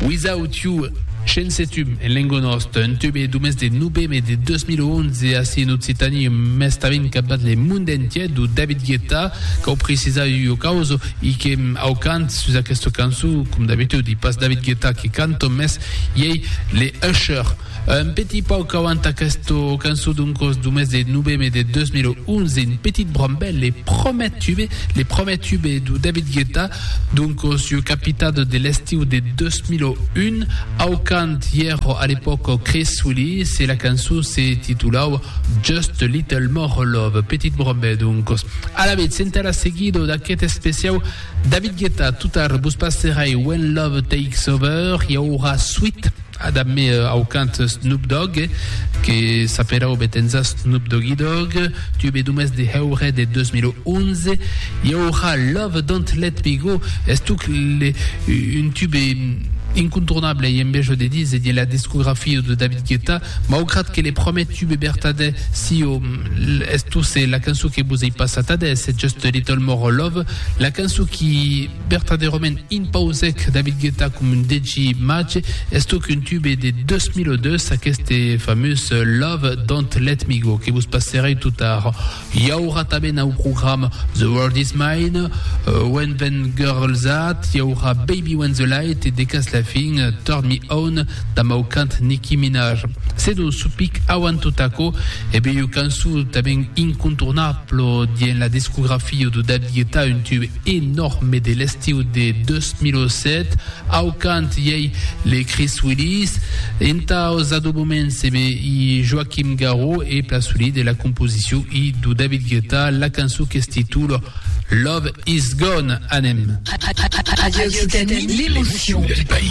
Without You, Shensetum en lengo nòst, un tube d'o mes de noveme de 2011 ací en Occitània e mès tanben cap dins le monde entier, d'o David Guetta, cau precisar ua causa, i que au cant sus aquesta cançon, com d'abitudi, pas David Guetta que canto, mès iei le Usher. Un petit pauc auant aquesta cançon d'un còs du mes de noveme de 2011, un petit brambèl, le promèr tube, le promèr tube du David Guetta, d'un còs ieu capitat de l'estiu de 2001, au cant ièro a l'epòca Chris Willis e la cançon se titulava Just a Little More Love, Petit Brambèl d'un còs. Alavetz, entà la seguida d'aqueth especiau David Guetta, totard vos passerai When Love Takes Over, i aurà suit. A dab me au cant Snoop Dogg, que s'apelava betenza Snoop Doggy Dogg, tu be dumès de heure de 2011, i aurà Love Don't Let Me Go, estuc le un tube incontournable i envejo de dins de la discografia de David Guetta, maugrat que le promèt tube bertadè sio estusse la cançon que vos ei passat adés, Just a Little More Love, la cançon qui. Vertadèrament impausèc David Guetta com un DJ màge, es toc un tube de 2002, aqueste famós Love Don't Let Me Go, que vos passerèi tot ara. I aurà tanben au programa The World Is Mine, When Them Girls At, i aurà Baby When The Light e de cas la fin Turn Me On damb au cant Nicki Minaj. Se non supic auant tot aquò, e bèi ua cançon tanben incontournable dien la discografia de David Guetta, un tube. e Nòrme de l'estiu de 2007, au cant i ei Les Chris Willis, entaus adobaments e be i Joaquim Garraud e Plaçolí de la composicion i do David Guetta, la cançon qu'es titula Love Is Gone. Anem. Radio Occitanie, l'émotion du pays.